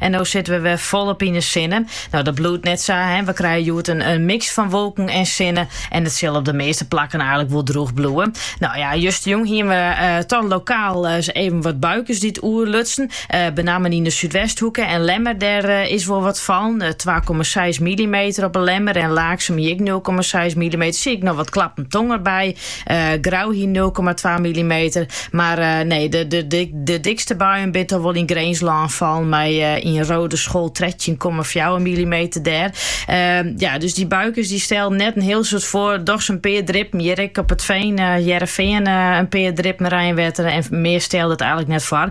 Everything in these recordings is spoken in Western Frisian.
En no sitte we wer folop yn de sinne. Nou, dat bliuwt net sa. We krije hjoed in, in mix fan wolken en sinne. En it sil op de measte plakken eigenlijk wol drûch bliuwe. Nou ja, justerjûn hiene we uh, eh, toch lokaal uh, even wat buikes dy't oerlutsen. Uh, eh, benammen yn de súdwesthoeke en Lemmer, dêr uh, is wol wat fallen. 2,6 mm op 'e Lemmer en Laaksum ek 0,6 mm. Siet ek noch wat klappen tonger by. Grou hie nul komma twa millimeter. Mar nee, de, de, de, de dikste buien binne toch wol yn Grinslân fallen. Mei yn Roodeschool 13,4 millimeter dêr. Ehm, ja, dus dy buikes dy stelden net in hiel soad foar. Dochs in pear drippen. Hjir ek op It Fean, uh, eh, Hearrenfean, eh, in pear drippen reinwetter. En mear stelde it eigenlijk net foar.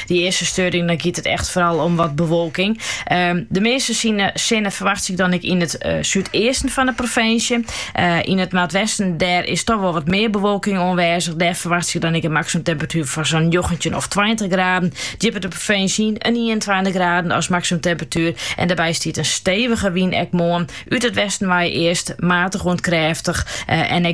Dy earste steuring dan giet it echt foaral om wat bewolking. Ehm, de measte sinne ferwacht ik dan ek yn it eh, súdeasten fan de provinsje. Eh, yn it noordwesten dêr is toch wol wat mear bewolking oanwêzich. Dêr ferwacht ik dan ek in maksimumtemperatuer fan sa'n 19 of 20 graden. Djipper de provinsje yn 21 graden as maksimumtemperatuer. En dêrby stiet in stevige wyn ek moarn. Ut it westen wei earst matich oant krêftich eh, en ik